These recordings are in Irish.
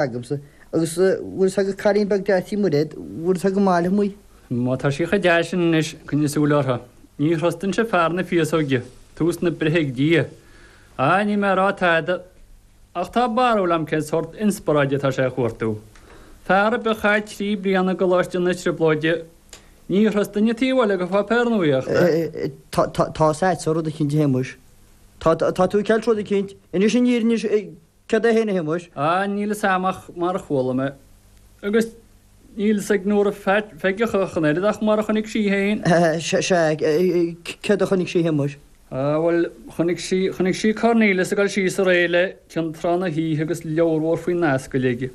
agamsa, agus bhfuil 's agat cailín beag deas tí Muiréad, bhfuil 's agat Maile amuigh. Má tá sí cho deas sin anois, coinnigh súil uirthi. Ní thrustfainnse fear na féasóige, tús na breithe ag Dia. Á, níl mé a' rá tada, ach tá barúil a'm cén sórt inspioráide atá sé a chuartú. Fear ar bith a chaith trí bliana i gColáiste na Trioblóide, ní thrustfainn é taobh thall de pháipéar nuaíochta. Tá, tá, tá's a'dsa rud eicínt a Shéamuis. Tá, tá tú ag ceilt rud eicínt. Inis an fhírinne, inis. Céard é féin a Shéamais? Á, níl fhios a'am ach mar a chuala mé, agus níl fhios ag Nóra Pheige ach an oiread, ach mar a chonaic sí féin. Sea, céard a chonaic sí a Shéamais? Á, bhuel, chonaic sí, chonaic sí Cornelius ag dul síos aréir le contráth na hoíche agus leabhar mhór faoin ascaill aige.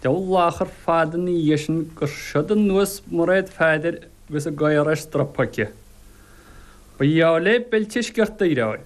Deabhal achar fada ina dhiaidh sin gur siúd anuas Mairéad Pheadair agus a gcaora ar stropa aici. Ba gheall le beilt de sciorta í, ar ndóigh.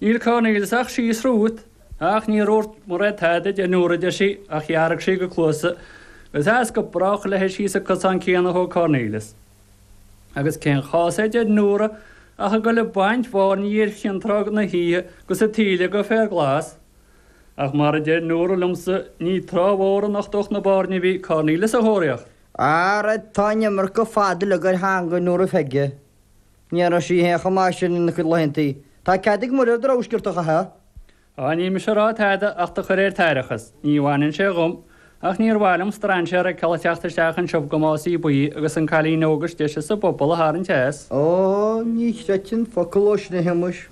Níl Cornelius ach síos romhat, ach níor úirt Mairéad tada den uair a deir sí, ach dhearg sí go cluasa is as go brách léi síos an cosán céanna a thóg Cornelius. Agus cén chás é, a deir Nóra, ach a dhul ag baint bhairnigh ar chontráth na hoíche agus an taoille go féar glas? Ach mar a deir Nóra liomsa, ní trá mhór a nochtódh na bairnigh a bhí Cornelius a thóraíocht. Ara tá an iomarca fad uilig ar theangaidh Nóra Pheige. Ní raibh sí féin chomh maith sin ina cuid laethanta. Tá cead ag Muiréad a rogha sciorta a chaitheamh. Á, níl mise ag rá tada ach do chur ar t'aireachas. Ní bhaineann sé dhom, ach níor mhaith liom strainséar a fheiceáil ag teacht isteach anseo go más í ba í agus an cailín óg is deise sa bpobal a tharraingt as. Á, ní chreidfinn focal dhó sin a Shéamais.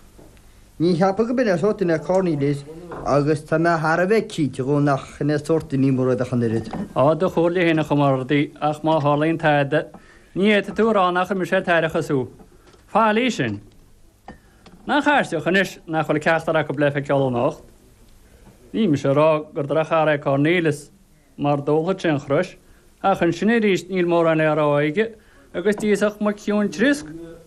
Ní cheapaim gurb in é an sórt duine Cornelius, agus tá mé thar a bheith cinnte de nach shin é sórt duine Muiréad ach an oiread. Á, do chomhairle féin a chomrádaí, ach má tharlaíonn tada, Ní fhéadfaidh tú a rá nár chuir mise ar t'aireachas thú faillí sin. Nach aisteach anois nach bhfuil ceachtar acu le feiceáil anocht. Níl mise ag rá gur drochearra é Cornelius mar d'ólfadh sé an chrois, ach ansin aríst níl mórán le rá aige agus d'íosfadh muic chiúin triosc.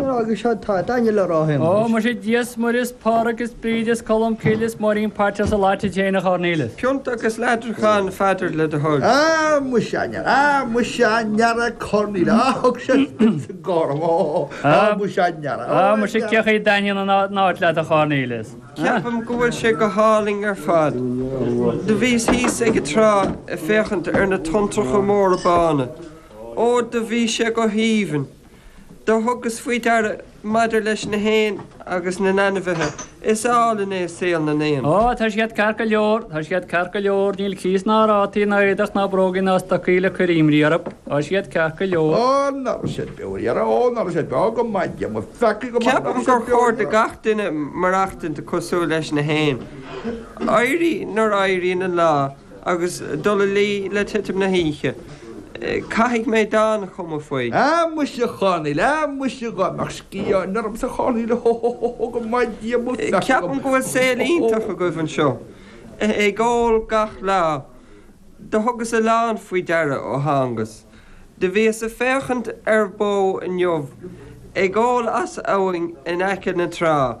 Agus seo atá taitneamh le rá fhéin anois. Ó, muise, Dia is, Muire 's Pádraig is Bríd is Colm Cill is Máirín Pater 's leat fhéin a Chornelius. Pionta agus leathcheann a Pheadair le do thoil. Á, muise a ndeara, á, muise a ndeara Cornél, á, thug sé spin sa gcorn, ó, á, muise a ndeara, á, a ndeara. Á, muise, cé chaoi a dtaitníonn an áit leat a Chornelius? Ceapaim go bhfuil sé go hálainn ar fad. Do bhíos thíos ag an trá ag féachaint ar na tonntracha móra bána. Ó, do bhí sé go haoibhinn. Do thugas faoi deara, maidir leis na héin agus na n-ainmhithe, is álainn é saol na n-éan. Ó, tá siad ceart go leor, tá siad ceart go leor, níl cíos ná rátaí ná éadach ná brógaí ná stocaí le cur imní orthu, tá siad ceart go leor. Ó, ná raibh siad beo ar iarraidh, ó, ná raibh siad beo go maith, Dia mo pheacaí go maith, ná raibh siad beo ar iarraidh. Ceapaim gur chóir do gach duine maireachtaint cosúil leis na héin, éirí nuair a éiríonn an lá. agus dul a luí le titim na hoíche. Caithfidh mé dán a chumadh faoi. A, muise, a Chonaill, a, muise, a, dá mbeadh sciathán ormsa, a Chonaill, hó, hó, hó, hó, hó, go mbainfeadh Dia mo pheaca dhíom. Ceapaim go bhfuil saol iontach agaibh anseo, ag ól gach lá. Do thugas a lán faoi deara ó thángas. Do bhíos a' féachaint ar bó inniu ag ól as abhainn in aice na trá.